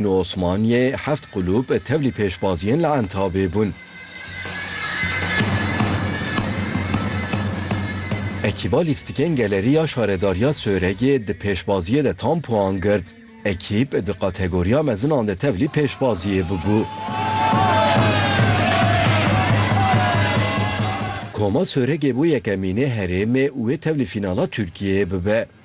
Li Osmaniyê heft qulûb tevlî pêşbaziyên li Entabê bûn. Ekîba lîstikên Geleriya Şaredariya Sêwregê di pêşbaziyê de tam puan girt. Ekîb di kategoriya mezinan de tevlî pêşbaziyê bûbû. Koma Sêwregê bû yekemînê herêmê û wê tevlî fînala Tirkiyeyê bibe.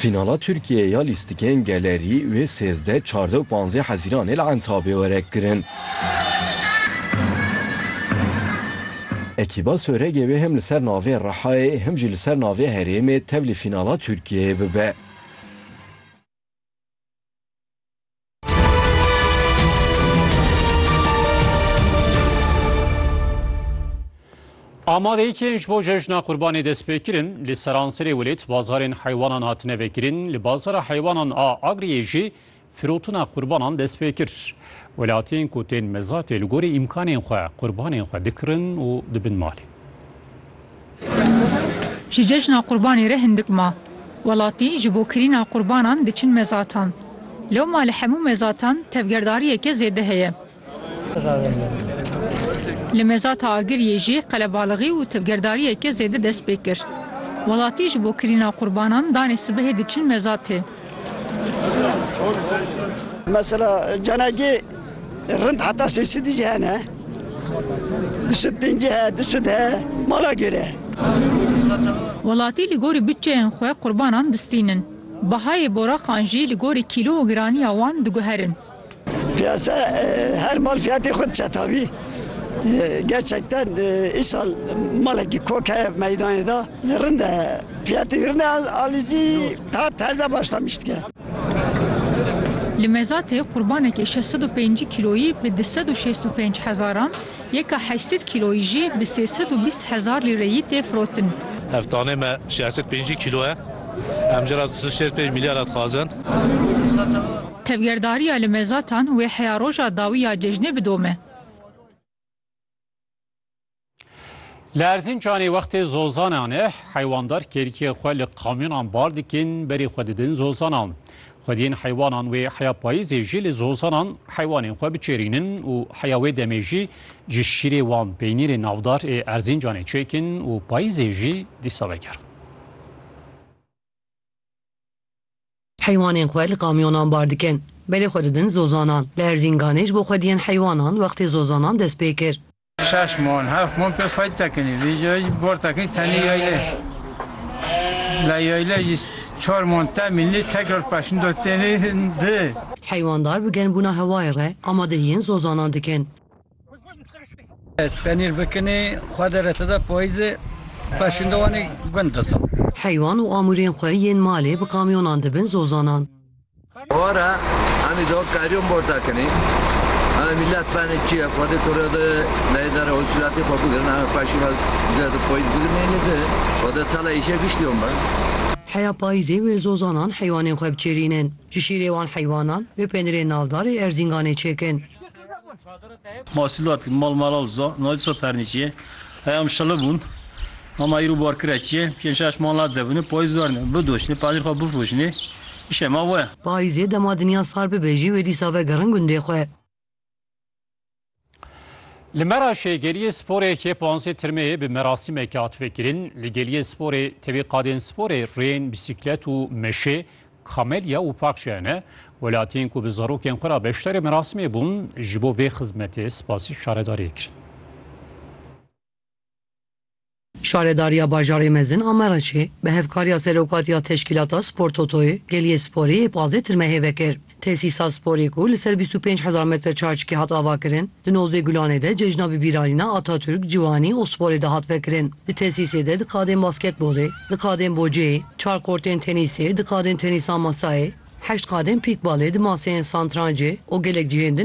Fînala Tirkiyeyê ya lîstikên gelerî wê sêzdeh, çardeh û panzdeh Hezîranê li Entabê were kirin. Ekîba Soregê wê hem li ser navê Rihayê hem jî li ser navê herêmê tevlî fînala Tirkiyeyê bibe. Amadeyîkên ji bo cejna qurbanê dest pê kirin li seranserê welêt bazarên heywanan hatine vekirin li bazara heywanan a Agriyê jî firotina qurbanan dest pê kir. Welatiyên ku tên mezatê li gorî îmkanên xwe qurbanên xwe dikirin û dibin malê. Ji cejna qurbanê re hindik ma. Welatî ji bo kirîna qurbanan diçin mezatan. Lewma li hemû mezatan tevgerdariyeke zêde heye. Li mezata Agiriyê jî qelebalixî û tevgerdariyeke zêde dest pê kir. Welatî ji bo kirîna qurbanan danê sibehê diçin mezatê. Mesela canekî rind heta sê sidî jî hene. Du sed pêncî he, du sed he, mala gêre. Welatî li gorî bütçeyên xwe qurbanan distînin. Bahayê boraqan jî li gorî kîlo û giranîya wan diguherin. Piyasa her mal fiyatê xwe çetavî. Gerçekten îsal malekî kok heye meydanê da. Rind e. Fiyatê rind e alîzî hat heze baştan biştike. Li Mezatê qurbanekî şeş sed û pêncî kîloyî bi du sed û şêst û pênc hezaran, yeka heşt sed kîloyî jî bi sê sed û bîst hezar lîreyî tê firotin. Ev tanê me şeş sed pêncî kîlo ye. Em jê re du sed û şêst û pênc mîlyara dixwazin. Tevgerdariya li Mezatan wê heya roja dawî ya cejnê bidome. Li Erzîncanê wextê zozanan e, heywandar kêrikê xwe li kamyonan bar dikin, berê xwe didin zozanan. Xwediyên heywanan wê heya payîzê jî li zozanan heywanên xwe biçêrînin û heya wê demê jî ji şîrê wan peynîrê navdar ê Erzîncanê çêkin û payîzê jî dîsa vegerin. Heywanên xwe li kamyonan bar dikin. Belê xwe didin zozanan. Li Erzînganê ji bo xwediyên heywanan wextê zozanan dest pê kir. Şeş mon, heft mon pêz xwedî tekinî. Vê cayê jî bar tekinî tenê yaylê. Lê yaylê jî çar mon te mînlî tekrar peşindo tênê di. Heywandar bi germbûna hewayê re amadehiyên zozanan dikin. Ez penîr bikinê xwe de re te de payîzê xwe şinde wanê gund disa. Heywan û amûrên xwe yên malê bi kamyonan dibin zozanan. Ora emî do karyon borta kinî. Em mîlet benê çi ye xwedê kure de leyê dere hosûlatî xwe bigirin em xwe şî ve de di payîz biginênê de xwe de tele îşe giştîyon be. Heya payîzê wê li zozanan heywanên xwe biçêrînin. Ji şîrê wan heywanan wê penirê navdar ê Erzînganê çêkin. Masîlat li mal malal za nayê ça pernîçiyê. Heya min şili bûn. Hema îro barkira çi ye? Pênc şeş mal nadibin, payîz vernin, bidoşnê, penîr xwe bifoşnê. Îşê me we. Payîzê dema dinya sar bibe jî wê dîsa vegerin gundê xwe. Li Meraşê geliyê sporê yê panzdeh tirmeyê bi merasîmekê hat vekirin. Li geliyê sporê tevî qadên sporê rêyên bîsîklet û meşê Kamelya û Pakçaya ne welatiyên ku bi zarokên xwe re beşdarê merasimê bûn, ji bo vê xizmetê spasî şaredariyê kirin. Şaredariya Bajarê Mezin a Mereçê bi hevkariya Serokatiya Teşkîlata Spor Totoyê geliyê sporê yê pazdeh tirmehê vekir. Tesîsa sporê ku li ser bîst û pênc hezar metre çarçikî hat avakirin, di nozdeh gulanê de cejna bibîranîna Atatürk, Ciwanî û sporê de hat vekirin. Di tesîsê de di qadên basketbolê, di qadên boceyê, Çar kortên tenîsê, du qadên tenîsa masayê, heşt qadên pîkbalê, du maseyên santrancê û gelek cihên din